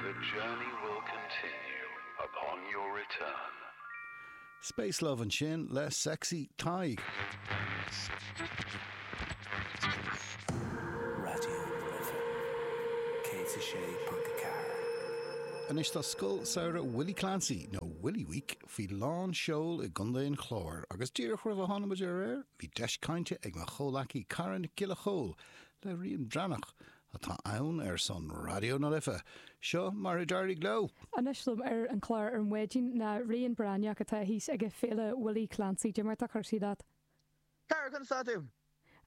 The journey will continue upon your return. Space Love ansin le Sexy Tadhg. Raidió na Life, 106.4. Anois tá Scoil Samhraidh Willie Clancy, nó Willie Week, faoi lán seoil i gContae an Chláir agus díreach roimh a tháinig muid ar aer bhí deis cainte ag mo chomhleacaí Cara Nic Giolla Chomhaill le Rian Breathnach atá ann ar son Raidió na Life. Seo mar a d'éirigh leo. Anois liom ar an chlár ar maidin ná Rian Breathnach atá thíos ag Féile Willie Clancy. Cad é mar atá cúrsaí leat? Cara, conas tá tú?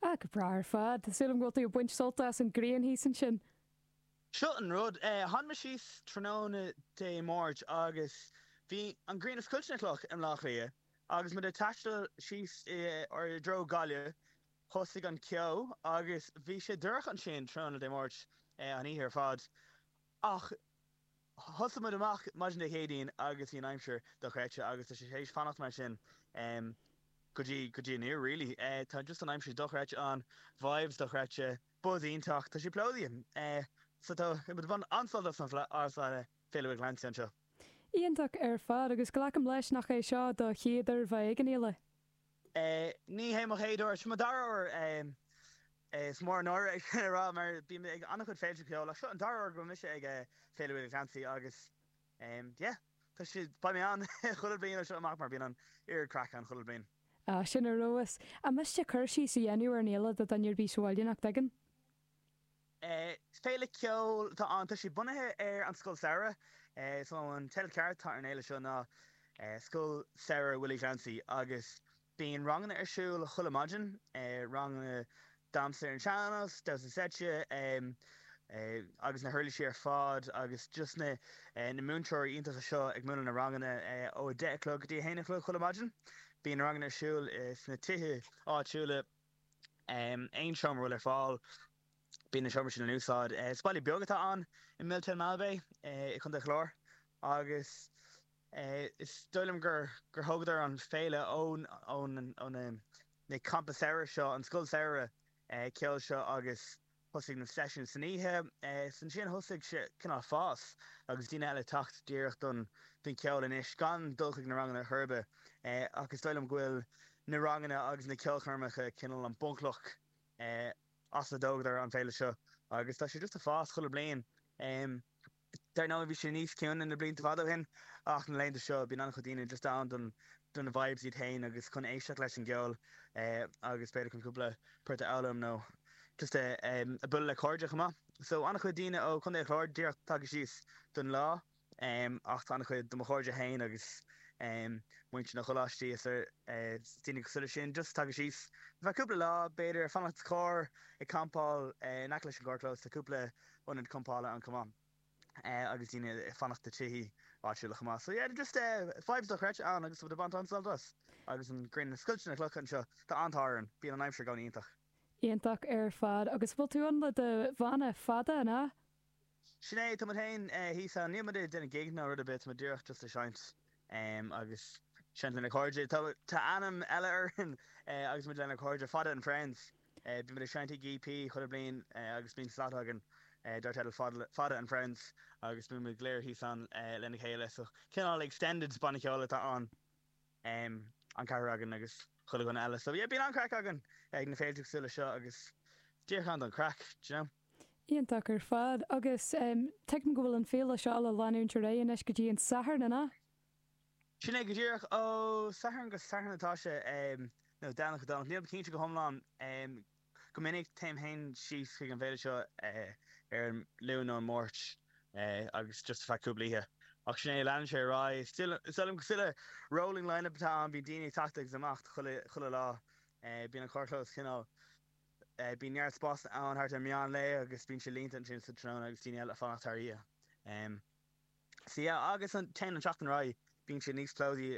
Ah, go breá ar fad. Tá súil agam go bhfuil tú ag baint sult as an ghrian thíos ansin. Seo an rud, tháinig mé síos tráthnóna Dé Máirt agus bhí an ghrian ag scoilteadh na gcloch i mBleá Cliath agus muid ag taisteal síos i dtreo Gaillimhe. Thosaigh an ceo agus bhí sé dorcha ansin tráthnóna Dé Máirt, an oíche ar fad. Ach thosaigh muid amach maidin Dé Céadaoin agus bhí an aimsir dochreidte agus tá sé tar éis fanacht mar sin go dtí go dtí inniu really. Tá just an aimsir dochreidte ann, vibes dochreidte, buzz iontach, tá sé plódaithe. So tá muid ag baint an-sult as an fleadh agus as Féile Willie Clancy anseo. Iontach ar fad agus glacaim leis nach é seo do chéad uair bheith ag an fhéile? Ní hé mo chéad uair, seo mo dara huair. Is mór an náire é sin a rá mar bím ag an-chuid féilte ceoil ach seo an dara huair go bhfuil mise ag Féile Willie Clancy agus yeah, tá sé, beidh mé ann chuile bhliain ó seo amach mar bíonn an oiread craic ann chuile bhliain. Ah, sin ar fheabhas. An miste cur síos a dhéanamh ar an fhéile do dhuine ar bith sa bhaile nach dtuigeann? Féile ceoil atá ann. Tá sé bunaithe ar an Scoil Samhraidh. So an teideal ceart atá ar an fhéile seo ná Scoil Samhraidh Willie Clancy agus bíonn ranganna ar siúl chuile maidin, ranganna damhsa ar an sean-nós, damhsa seite agus na huirlisí ar fad agus just na múinteoirí iontacha seo ag múineadh na ranganna ó a deich a chlog go dtí a haon a chlog chuile maidin. Bíonn na ranganna ar siúl sna tithe áitiúla. Aon seomra a bhfuil ar fáil, bíonn na seomraí sin in úsáid. Is baile beag atá ann i Miltown Malbay i gContae an Chláir agus is dóigh liom gur thógadar an féile ó na campa samhraidh seo, an scoil samhraidh ceoil seo agus Thosaigh na seisiúin san oíche, is ansin a thosaigh sé cineál fás agus daoine eile ag teacht díreach don cheol anois gan dul chuig na ranganna chor ar bith. Ach is dóigh liom go bhfuil na ranganna agus na ceolchoirmeacha cineál an bhunchloch as a dtógadar an féile seo agus tá sé just ag fás chuile bliain. Dar ndóigh bhí sé níos ciúine na blianta fada ó shin ach na laethanta seo bíonn an-chuid daoine just ann don don vibes iad féin agus chun éisteacht leis an gceol agus b'fhéidir chun cúpla port a fhoghlaim nó just ag bualadh le cairde chomh maith. So an-chuid daoine ó Chontae an Chláir díreach tagtha síos don lá ach tá an-chuid de mo chairde féin agus muintir na gcoláistí is daoine cosúil leis sin just tagtha síos ar feadh cúpla lá b'fhéidir ag fanacht sa charr ag campáil in aice leis an gcarrchlós tá cúpla ionad campála ann chomh maith agus daoine ag fanacht i tithe áitiúla chomh maith. So yeah just eh vibes dochreidte ann agus tá muid ag baint an-sult as agus an ghrian ag scoilteadh na gcloch anseo tá an t-ádh orainn bíonn an aimsir i gcónaí iontach. Iontach ar fad. Agus bhfuil tú ann le do bhanna Fada, an ea? Sin é, tá muid féin eh thíos ann. Níl muid ag déanamh gig ná rud ar bith tá muid díreach just ag seinnt em agus ag seinnt lenár gcairde. Tá tá ainm eile orainn eh agus muid lenár gcairde Fada and Friends. Bíonn muid ag seinnt ag EP chuile bhliain agus bíonn slot againn dar teideal Fada and Friends agus bíonn muid go léir thíos ann lena chéile. So cineál extended banna ceoil atá ann, an ceathrar againn agus chuile dhuine eile. So yeah bíonn an-craic againn ag na féilte cosúil le seo agus díreach ann don chraic, d'you know. Iontach ar fad. Agus tuigim go bhfuil an féile seo le leanúint ar aghaidh anois go dtí an Satharn, an ea? Sin é go díreach. Ó Satharn go Satharn atá sé, nó Domhnach go Domhnach. Nílim cinnte go hiomlán. Go minic téim féin síos chuig an bhféile seo ar an Luan nó an Máirt agus just ar feadh cúpla oíche. Ach sin é, leanann sé ar aghaidh. Is dóigh liom gur saghas rolling line-up atá ann, bíonn daoine ag teacht agus imeacht chuile lá. Bíonn an carrchlós cineál, bíonn neart spásanna ann thart ar meán lae agus bíonn sé líonta ansin sa tráthnóna agus daoine eile ag fanacht thar oíche. So agus téann an tseachtain ar aghaidh, bíonn sé níos plódaí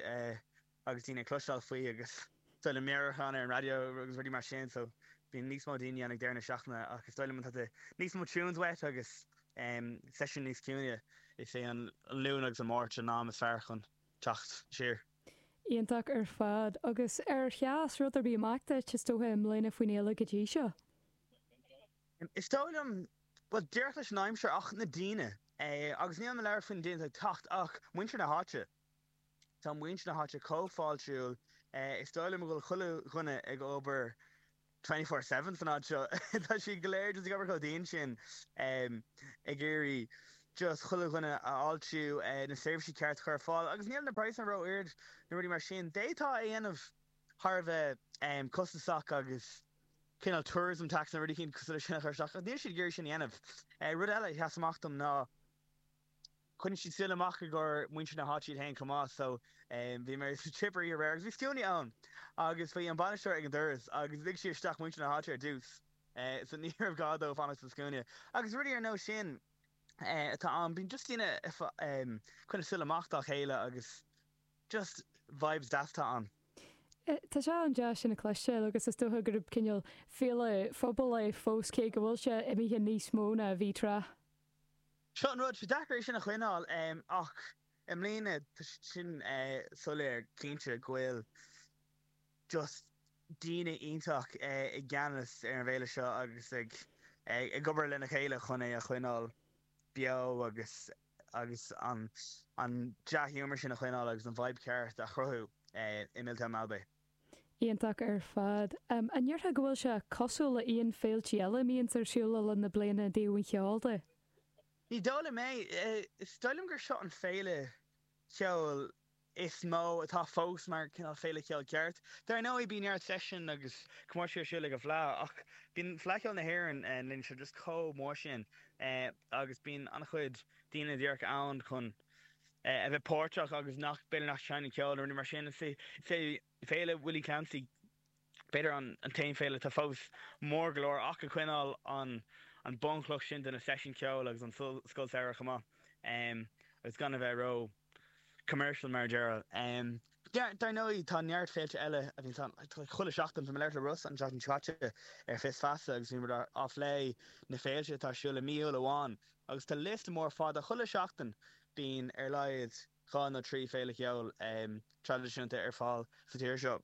agus daoine ag cloisteáil faoi agus is dóigh liom meabhrú a chur ann ar an raidió agus rudaí mar sin, so bíonn níos mó daoine ann ag deireadh na seachtaine ach is dóigh liom má tá níos mó tunes uait agus seisiúin níos ciúine. Is é an Luan agus an Máirt an am is fearr chun teacht siar. Iontach ar fad. Agus ar sheas rud ar bith amach duit, is dócha, i mbliana faoin fhéile go dtí seo? Is dóigh liom, bhuel, díreach leis an aimsir ach na daoine. Agus nílim ag labhairt faoi na daoine atá ag teacht ach muintir na háite. Tá muintir na háite chomh fáiltiúil. Is dóigh liom go bhfuil chuile dhuine ag obair twenty four seven san áit seo. Tá siad go léir just ag obair chomh dian sin ag iarraidh just chuile dhuine a fháiltiú, na seirbhísí ceart a chur ar fáil agus níl na praghsanna ró-ard nó rudaí mar sin. D'fhéadfá a dhéanamh thar a bheith costasach agus. cineál tourism tax nó rud éicint cosúil leis sin a chur isteach ach níl siad ag iarraidh sin a dhéanamh. Rud eile a sheas amach dom ná choinnigh siad súil amach i gcomhair muintir na háite iad féin chomh maith so bhí mé sa Chip oíche aréir agus bhí scuainí ann agus bhí an bainisteoir ag an doras agus lig sí isteach muintir na háite ar dtús so ní raibh gá dóibh fanacht sa scuaine agus rudaí ar nós sin atá ann. Bíonn just daoine ag coinneáil súil amach dá chéile agus. Just vibes deasa atá ann. Tá sé an-deas sin a chloisteáil agus is dócha gurb cineál féile phobail é fós cé go bhfuil sé imithe níos mó ná a bhí tráth. Seo an rud, sé deacair é sin a choinneáil ach i mbliana tá sé sin soiléir cinnte go bhfuil just daoine iontach i gceannas ar an bhféile seo agus ag obair lena chéile chun é a choinneáil beo agus agus an dea-ghiúmar sin a choinneáil agus an vibe ceart a chruthú i Miltown Malbay. Iontach ar fad. An ndéarfá go bhfuil sé cosúil le haon féiltí eile a mbíonns ar siúl le linn na bliana i dtaobh an cheoil de? Ní dóigh liom é. Is dóigh liom gur seo an féile ceoil is mó atá fós mar cineál féile ceoil ceart. Dar ndóigh, bíonn neart seisiún agus comórtais ar siúl ag an bhFleadh ach bíonn Fleadh Cheoil na hÉireann ár linne seo just chomh mór sin agus bíonn an-chuid daoine díreach ann chun a bheith páirteach agus nach b'fhéidir nach seinneann ceol nó rudaí mar sin. Is é. Féile Willie Clancy b'fhéidir an t-aon fhéile atá fós mór go leor ach a choinníonn an bunchloch sin de na seisiúin ceoil agus an scoil samhraidh chomh maith agus gan a bheith ró commercial mar a déarfá. Dar ndóigh tá neart féilte eile a bhíonns ann chuile sheachtain. Bhí mé ag labhairt le Rossa an tseachtain caite ar Fios Feasa agus bhíomar ag plé na féilte atá ar siúl i mí Iúil amháin agus tá liosta mór fada chuile sheachtain bíonn ar a laghad dhá nó trí féile ceoil traidisiúnta ar fáil sa tír seo.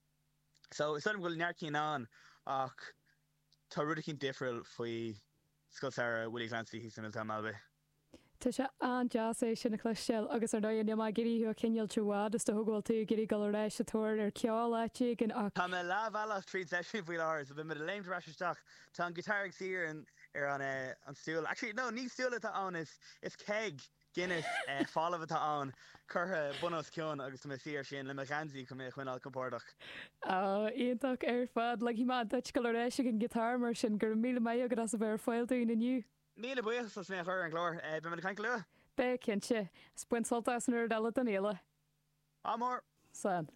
So is dóigh liom go bhfuil neart cinn ann ach tá rud eicínt difriúil faoi Scoil Samhraidh Willie Clancy thíos i Miltown Malbay. Tá sé an-deas é sin a chloisteáil agus ar ndóigh níl mé ag iarraidh thú a choinneáil rófhada is dócha go bhfuil tú ag iarraidh dul ar ais sa tóir ar ceol áit éigin ach Tá mé leathbhealach tríd seisiún faoi láthair so beimid ag léimt ar ais isteach. Tá an guitar ag Ciaran ar an stúl, actually no ní stúl atá ann is keg! Guinness folamh atá ann, curtha bun os cionn agus tá mé i mo shuí air sin, le mo gheansaí chun mé a choinneáil compordach. Oh, iontach ar fad. Ligfidh mé duit dul ar ais chuig an ngiotár mar sin. Go raibh míle maith agat as a bheith ar fáil dúinn inniu. Míle buíochas as mé a chur ar an gclár. Beidh muid ag caint go luath. Beidh, cinnte. Is bain sult as an gcuid eile den fhéile. Ádh mór! Slán.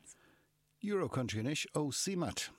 Euro Country anois ó CMAT.